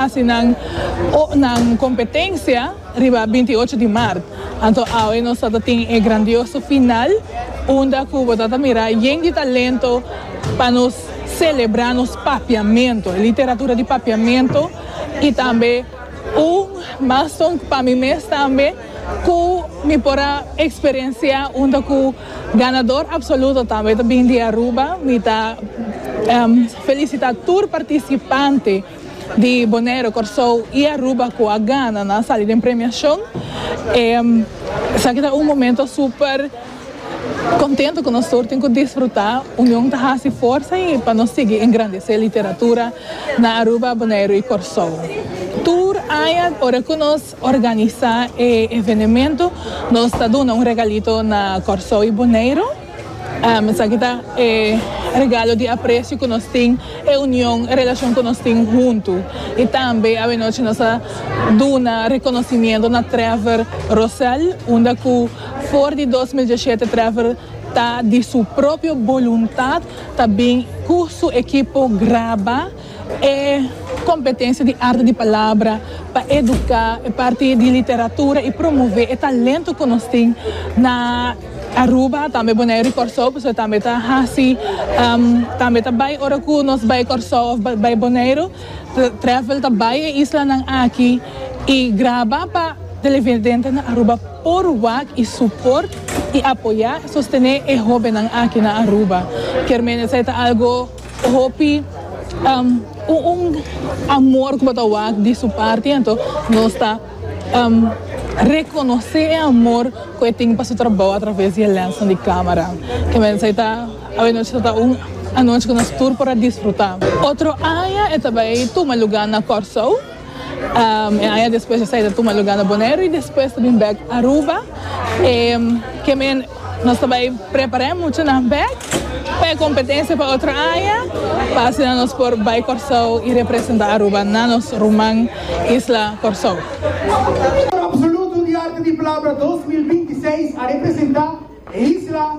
Hasi nan nan competencia riba binti ocho di maart, anto awe nos ta ta tin e grandioso final unda cu bo ta ta mira yen di talento pa nos celebra nos papiamento, literatura di papiamento y tambe un milestone pa mi mes tambe cu mi por a experiencia unda cu ganador absoluto tambe ta bin di Aruba, mi ta felicita tur participante. di Bonero, Kòrsou i Aruba ku a gana nan a sali den premiashon. Esaki ta un momento super kontentu ku nos tur tin ku disfrutá. Union ta hasi forsa i pa nos sigui engrandesé literatura na Aruba, Boneiru i Kòrsou. Tur aña ora ku nos organisá e evenemento nos ta duna un regalito na Kòrsou i Boneiru. Esaki ta e regalo di aprecio cu nos tin, e union, e relacion cu nos tin hunto. Y tambe avenochi nos a duna reconocimiento na Trevor Rosell, unda cu for di dos mil dieschete Trevor ta di su propio boluntad ta bin cu su ekipo graba, E kompetensia di arte di palabra pa eduká e parti di literatura i promové e talentu ku nos tin na Aruba, tambe Boneiru i Kòrsou, pasobra tambe ta hasi, tambe ta bai ora ku nos bai Kòrsou òf bai Boneiru, trèfel ta bai e islanan aki i graba pa televidente na Aruba por wak i suport i apoyá i sostené e hóbennan aki na Aruba. Kermene esei ta algu. Hopi un amor cu bo ta wak di su parti anto nos ta reconoce e amor cu e tin pa su trabao a traves di e lensnan di camera. Ke mensai ta awenochi ta ta un anochi cu nos tur por a disfruta. Otro aña e ta bay tuma lugar na Corsou. E aña despues esei ta tuma luga na Boneiru y despues ta bin bek Aruba. E ke men nos ta bai prepar'e muchanan bek pa e competencia pa otro aña pa asina nos por bai Corsou y representa Aruba na nos ruman isla Corsou. Coro absoluto di arte di palabra dos mil binti seis a representa e isla.